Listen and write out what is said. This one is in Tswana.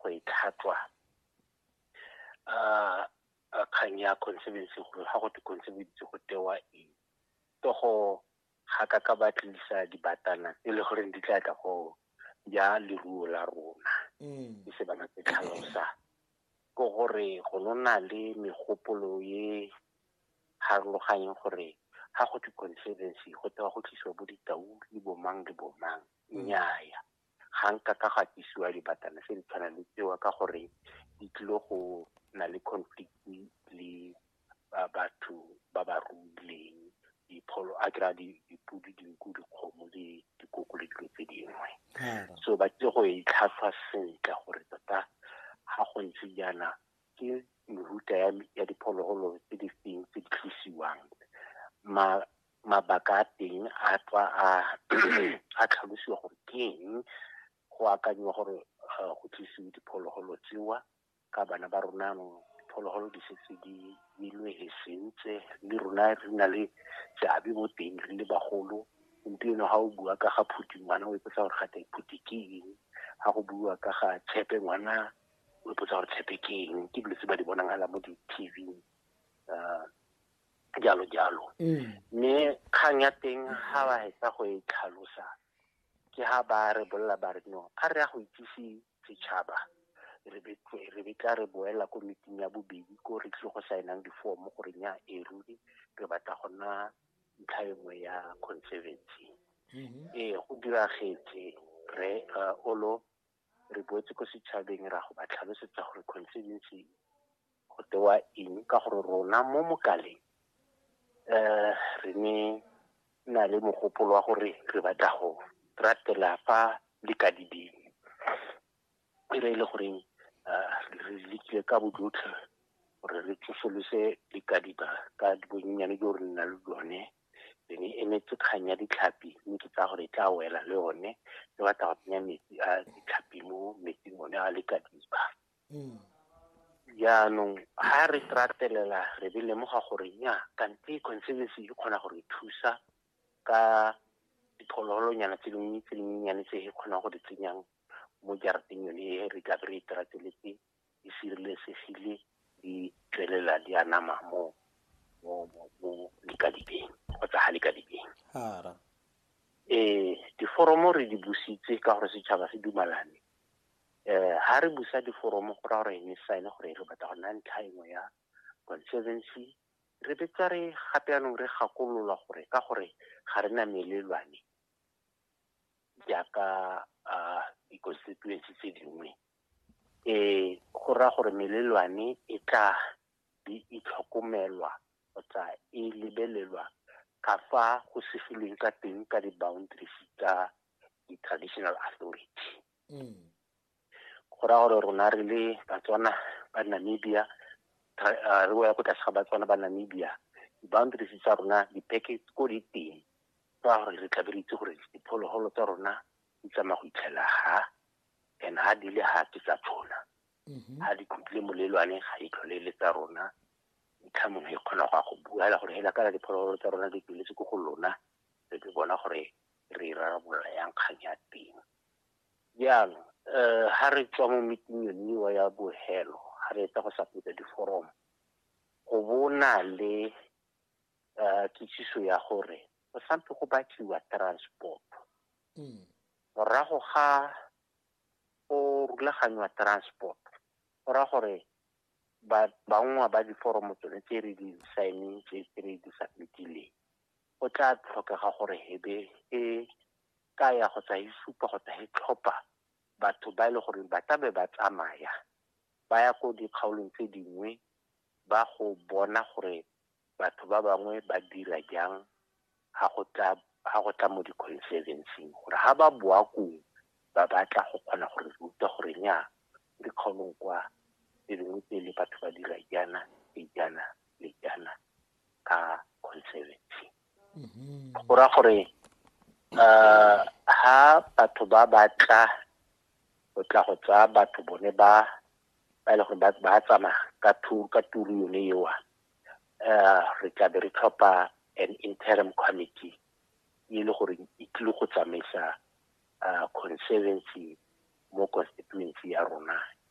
go e tlhatlwa a kgang ya conservancy gore ga go te conservancy go tewa eng to go ga ka ka ba tlisa dibatana e le goreng di tla tla go ya leruo la rona mm. e se bana tse tlhalosa ko gore go nona le megopolo ye harologanyeng gore ga go te conservancy go tewa go tlisiwa bo ditau le bomang le bomang mm. nnyaya ga nka ka ga tisiwa dibatana se di tshwana le tsewa ka gore di tlile go na le conflict le batho ba ba ruileng dipholo a kry-a dipodi dinku dikgomo le dikoko le dilo tse dingwe so ba tlile go e tlhatlhwa sentle gore tota ga go ntse jaana ke mehuta ya diphologolo tse di feng tse di tlosiwang mabaka a teng a tswa a a tlhalosiwa gore ke eng go akanyiwa gore eh, go tlisiwe diphologolo tsewa ka bana ba rona anong diphologolo di setse di ilwe he sentse le rona re na le seabe mo teng re le bagolo gompieno ga o bua ka ga phuti ngwana o ipotsa gore gate phuti ke eng ga go bua ka ga tshepe ngwana o ipotsa gore tshepe ke eng ke dilo tse ba di bonagala mo di-tv um jalo jalo mm. mme kgang ya teng ga ba hetsa go e tlhalosa ke ha ba re bolela ba re no a re ya go itsise setšhaba re betla re boela ko meeting ya bobedi ko re tlile go saenang difomo gore nya e ruri re batla go nna ntlha e nngwe ya conservancy mm-hmm. ee go diragetse re uh, olo re boetse ko setšhabeng ra go ba tlhalosetsa gore constituency go tewa eng ka gore rona mo mokaleng um re ne na le mogopolo wa gore re batla go ratela fa le ka diding e re e le goreng um re lekile ka bojotlhe gore re tsosolose dikadiba ka bonnyane jo re nna le jone be ne emetse kgang ya ditlhapi mme ke tsaya gore e tla wela le one le batla go tsenya metsi a ditlhapi mo metsing one a le ka diba mm. jaanong ga re tratelela re be lemoga gore nya kante conservancy e kgona gore e thusa ka diphologolonyana tse dingwe tse dinyenyane tse e kgonang go di tsenyang mo jarateng yone e re tla be re e trateletse di sireletsegile di tswelela di anama mo mo mo mo likadibeng kgotsa ga likadibeng hara eh diforomo re di busitse ka gore setšhaba se dumalane eh ha re busa diforomo go ra gore ne sign gore re batla go nna ntlha engwe ya conservancy re betsa re gape yanong re gakolola gore ka gore ga re na melelwane jaaka di-constituency tse dingwe Ee, go raya gore melelwane e tla be e tlhokomelwa kgotsa e lebelelwa ka fa go segilweng ka teng ka di-boundaries tsa di-traditional authority. Go raya gore rona re le Batswana ba Namibia, re wela ko tlase ga Batswana ba Namibia, di-boundaries tsa rona dipeke ko di teng ka gore re tla be re itse gore diphologolo tsa rona di tsamaya go itlhela ha and ha di le ha ke tsa tshona mm-hmm. ha di khutlile molelwane ga e tlhole le tsa rona ntlha mongwe e kgona go ya go bua hela gore hela kana diphologolo tsa rona di tsweletse ko go lona re ke bona gore re e rarabolola yang kgang ya teng jaanong um ha re tswa mo meeting yoniwa ya bohelo ha re etsa go sapetsa diforomo go bona le um kitsiso ya gore go sampe go batliwa transport morago ga go rulaganywa transport go raya gore bangwe ba diforomo tsone tse re di signing tse re di submitileng go tla tlhokega gore hebe e ka ya go tsa e supa go tsa e tlhopha batho ba e le gore ba tlabe ba tsamaya ba ya ko dikgaolong tse dingwe ba go bona gore batho ba bangwe ba dira jang ha go tla ha go tla mo di-conservancy gore ha ba boa kong ba batla go kgona go re ruta gore nya dikgaolong kwa tse dingwe pele batho ba dira jaana le jaana le jaana ka conservancy mm-hmm. go ra gore um ha batho ba batla go tla go tsaya batho bone ba ba e le gore ba tsamaya ka tour ka tour yone ewa uh, re tla be re tlhopha an interim committee e le gore e tlile go tsamaisa uh, conservancy mo constituency ya rona